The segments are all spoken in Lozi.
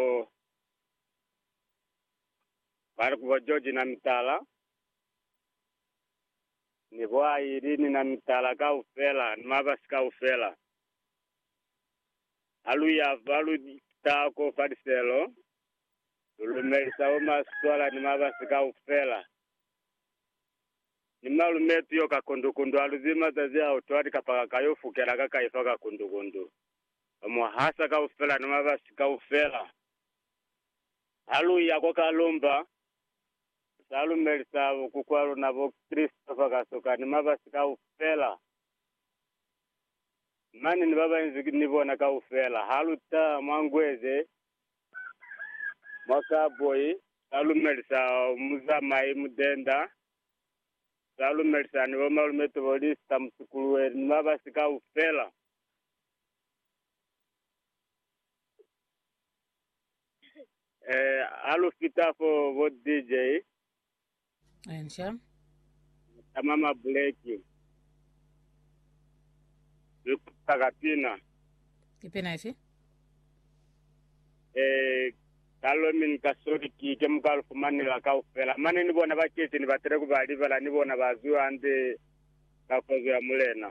bo ba li ku bo George na mitala ni bo Aileen na mitala kaufela ni mabasi kaufela. Ha lu ya fa, lu taha ko fa liselo, lu lumelisa bo maswala ni mabasi kaufela. Ni malumetu yo ka kundu-kundu ha lu zibi mazazi a utwa likapaka ka yo fukela ka kaifa ka kundu-kundu. Ba mu hasa kaufela na mabasi kaufela. Ha lu ya kwa kalumba, lu sa lumelisa bokukwa luna bo Christopher Kasoka ni mabasi kaufela. Mani ni ba banzi ni bona kaufela. Ha lu ta mwa Ngweze, mwa Karboy, sa lumelisa muzamai Mudenda, sa lumelisa ni bo malume Tobolista Musukuluweli ni mabasi kaufela. Eh, ha lu fita fo bo DJ, Enca. tama ma buleki. Lu kuta ka pina. Ki pina ifi? Eh, ka lo mi ni ka soli ki ke mu ka lu fumanela kaufela. Mane ni bona bakeceni ba tele ku ba libala ni bona ba zwiwa hande ka kozo ya Mulena.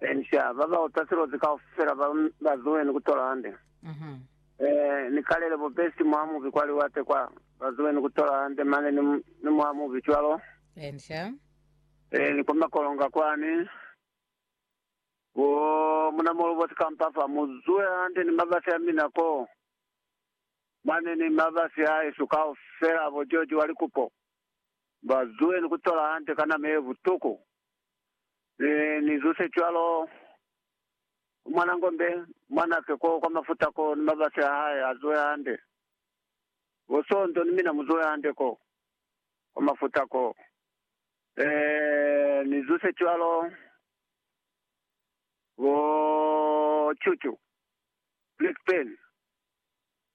Encia, ba ba utwa silozi kaufela ba ba zuweni ku tola hande. Eeh, ni kalele bo besi mwa mubi kwa liwate kwa, ba zuweni ku tola hande mane ni, ni mwa mubi cwalo. Encia. Eeh, ni kwa makolonga kwani, bo muna molobosi kampafa, mu zuwe hande ni mabasi a mina ko mane ni mabasi a hesu kaufela, bo George wa likupo, ba zuweni ku tola hande ka nama ye butuku. Ni, ni zuse cwalo. Ku mwana ngombe, mwanake ko kwa mafuta ko, ni mabasi a hae a zuhe hande. Bo Sonto ni mina mu zuhe hande ko, kwa mafuta ko. E, ni zuse cwalo. Bo Chuchu, Blackburn,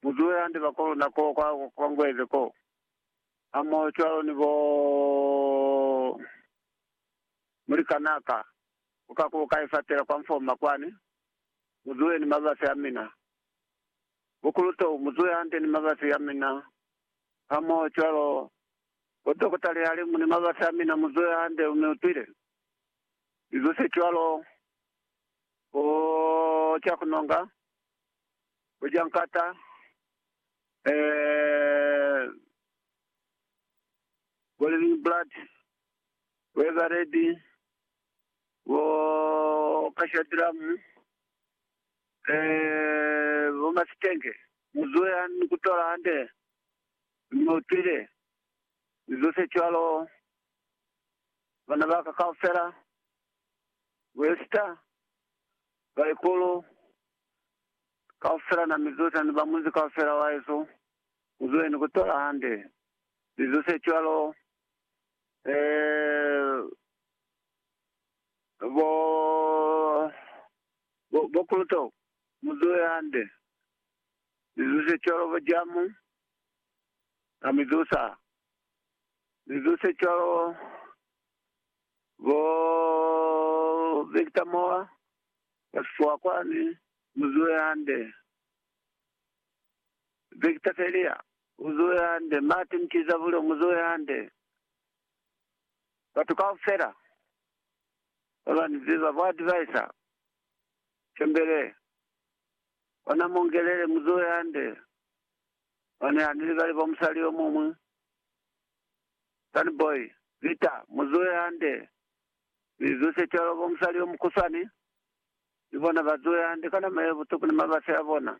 mu zuhe hande bakoluna ko kwa, kwa Ngweze ko, hamoho cwalo ni bo. Mulikanaa ka, u ka kuka ka ifatela kwa mfoma kwani, mu zuhe ni mabasi a mina. Bukulu tou, mu zuhe hande ni mabasi a mina hamoho cwalo. Bo dokota Lihalimu ni mabasi a mina, mu zuhe hande, mi utwile. Mi zu se cwalo, bo Cakunonga, bo Jankata, ee, bo Livingblad, Ekareti, bo Kashadiramu, e bo Masitenke, mu zuhe ha ni kutola hande, mi utwile, ni zose cwalo, bana baka kaufela, bo Esta, baikulu, kaufela na mi zose hani ba munzi kaufela wahesu, mu zuhe ni kutola hande, ni zose cwalo, bo, bo, bo Kuluto, muzuhe hande. Mizuse cwalo bo Jamu, na mizusa. Mizuse cwalo bo Victor Moa, ba sifuwa kwani, muzuhe hande. Victor Felia, Muzuhe hande. Martin Chizavulo, Muzuhe hande. Batu kaufela baba ni ziba, bo advisor Shembele, ona Mongelele, muzuhe hande. Mane ha ni libali bo musali yo muñwi, Sunny Boy, Vita, muzuhe hande. Ni zuse cwalo bo musali yo mukusani, ni bona ba zuhe hande ka nama ye butuku ni mabasi a bona.